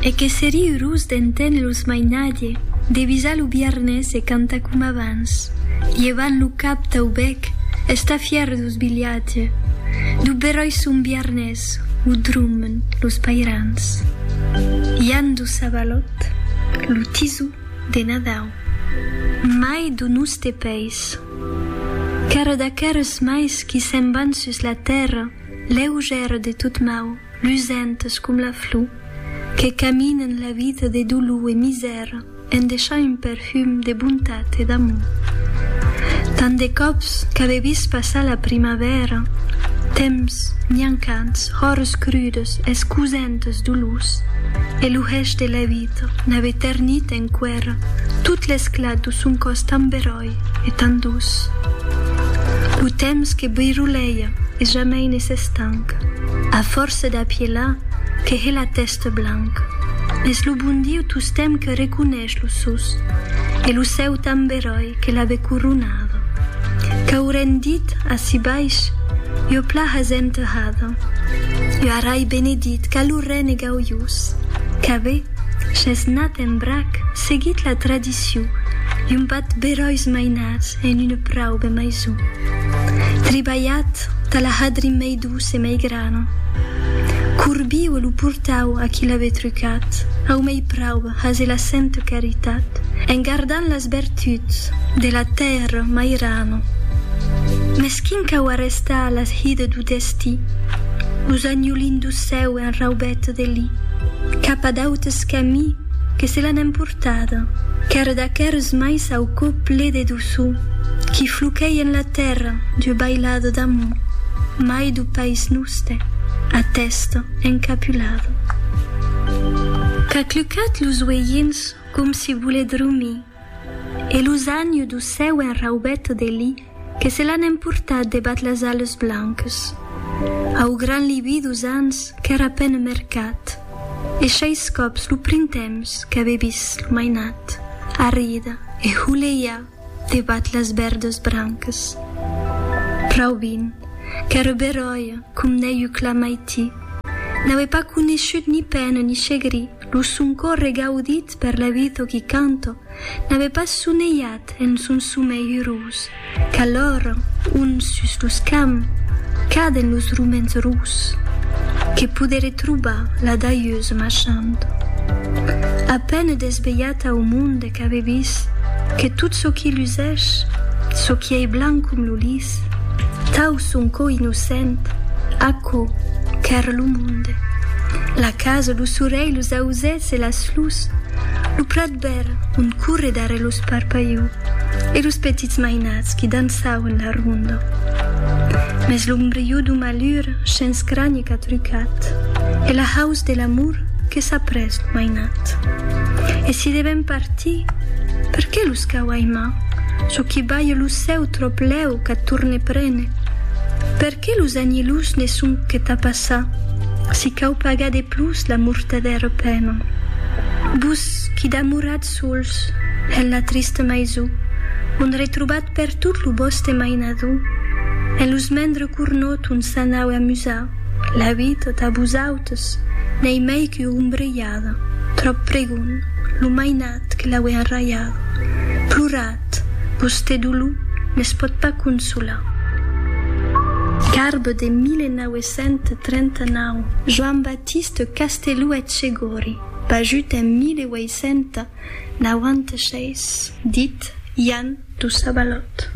E que serí urós d'enténer los mainatge, de visar lo biarnés e cantar com abans, lhevant lo cap tau bèc, estar fièr dous bilhatge, dou beròi son biarnés, o drummen los pairans. Ian dous Sabalòt, lo tisou de Nadau. Mai dou noste pais. Qu'ère d'aqueres mais qui se'n van sus la tèrra, lèu gère de tot mau. lusentes com la flor, que caminen la vida de dolor e misèra en deishar un perfum de bontat e d'amor. Tant de còps qu'ave vist passar la primavèra, temps miancants, hòres crudes, escusentes dolors, e lo hèch de la vida n'ave ternit enqüèra tot l'esclat do son còs tan beròi. e tan doç. Lo temps que briroleia e jamei ne s'estanc, a fòrça d'apielar que hè la tèsta blanc. Es lo bon Diu tostemp que reconeish lo sus e lo cèu tan beròi que l'ave coronada. Qu'aurén dit ací baish ua plaha zenterrada, ua rai benedit qu'a lo rène gaujós, qu'ave, ch'es nat en brac, seguit la tradicion. Mauricio i un bat beròis mainats en una praube maison. Tribalhat tà la hadri mei douce e mei grana. Corbiu e lo portau a qui l'ave trucat, au mei praube hase la sente caritat, en gardant las bertuts de la tèrra mairana. Mes quin cau arrestar las hide du destí, los agnolin du cèu en raubète de li, cap a d'autes camí, Que se l'an emportada. Qu'ère d'aqueres mai s'au cò ple de doçor, qui floquèi en la tèrra d'ua bailada d'amor, mai d'o pais noste, a tèsta encapulada. Qu'a clucat los uelhins com si volè dromir. E lo zanhu do seu enraubet de li que se l'an emportat debat las ales blanques. Au gran libi dos ans qu'èra pène mercat, e sheis còps lo printemps qu'avè vist lo mainat arrida e holeiar debat las verdes branques. Raubin, qu'èra beròia com n'èiu clar maití, n'avè pas coneishut ni pène ni chegri, Lo son còr regaudit per l'evito qui canto n'avè pas sonelhat en son somei urós, qu'alhòr ont sus los camps caden los ruments rus, que poderè trobar la daieuse marchant. A peine desvelhat au monde Qu'ave vist que tot çò qui lusèsh, çò qui ei blanc com lo lis, tau son cò innocent, aquò qu'ère lo monde, la casa, lo sorelh, los ausèths e las flors, lo prat verd ont corre darrèr los parpaiu e los petits mainats qui dançauen la ronda. Mès l'ombriu du malur shens cranie qu'a trucat e la haus de l'amor, Que s'a pres lo mainat. E si devèm partir, per qué los cau aimar? Çò qui balhe lo cèu tròp lèu qu'a torne prene. Per qué los agnilhos ne son que tà passar? Si cau pagar de plus la mortadèra pena. Vos qui damoratz sols en la trista maison, ont retrobat pertot lo vòste mainador, en los mendre cornòt ont s'anaue amusar, la vida tà vosautes. Jesús n'ei mei qu'u ombrelhada, tròp pregon, lo mainat que l'aué enraiada. Plorat, vosté dolor ne's pòt pas consolar. Carbe de 1939. Joan Batiste Castelou Etchegori, pajut en 1896. Dit Jan Toussabalot.